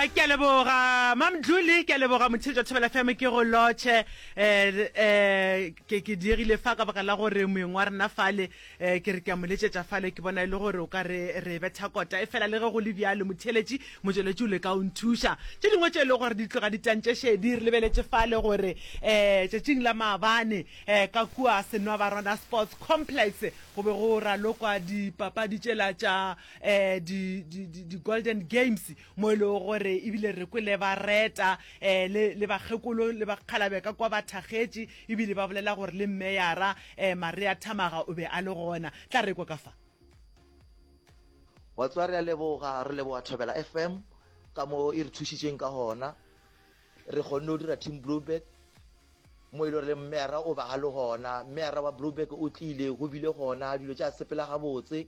ke a leboga mamdluli ke a leboga motshedi jwa thobela fm ke go lotšhe um ke ke diegile fa ka baka la gore moeng wa rena fale um ke re ke a mo letšetša fale ke bona e le gore o ka re re betha kota e fela le ge go le bjalo motheletši motšweletši o le ka o nthuša tše dingwe tše e le gore di tloga di tantše šedi re lebeletše fale gore um tšatšing la maabane um ka kua senwa ba rona sports complex go be go ralokwa dipapadi tšela tša eh di di di, di golden games mo ile e gore ebile re kwele ba reta eh le le bagekolo le bakgalabe ka kwa ba thagetše ebile ba bolela gore le mmeyara eh maria thamaga o be a le gona tla re kwa ka fa wa tswa re a leboga re leboga thobela fm ka mo e re thušitšeng ka gona re kgonne go dira team blueberg mo e le gore le mmeyara o ba a le gona mmeyara wa blueberg o tlile go bile gona dilo tša sepela gabotse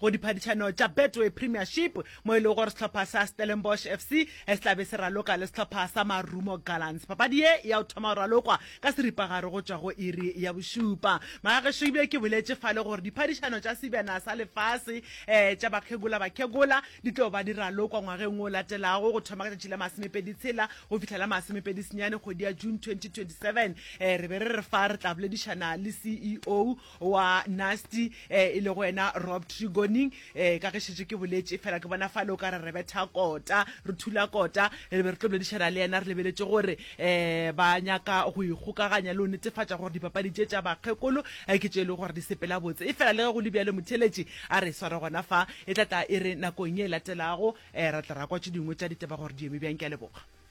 go diphadišano tša Betway Premiership mo e lego gore sehlopha sa Stellenbosch FC se tla be se raloka le sehlopha sa Marumo Gallants. Papadi ye ya o thoma go ralokwa ka seripagare go tšwa go iri ya bošupa. Magagešo ebile ke boletše fale gore diphadišano tša Sebjana sa Lefase um tša bakhegola-bakhegola di tlo ba di ralokwa ngwageng o latelago go thoma ka tšatši la masomepedi tshela go fihla la masomepedi senyane kgwedi ya June 2027. Um re be re re fa re tla boledišana le CEO wa nasty eh, e le go wena rob trigoning eh, ka ge šetše ke boletše fela ke bona fale o ka re re betha kota re thula kota re be re tlo boledišana le yena re lebeletše gore eh, ba nyaka go ikgokaganya le o netefatša gore dipapadi tše tša bakgekolo eh, ke tše e le gore di sepela botse e fela le ge go le bjalo motheletši a re sware gona fa e tla tla e re nakong ye e latelago eh, ra tla ra kwa tše dingwe tša ditaba gore di eme bjang ke a leboga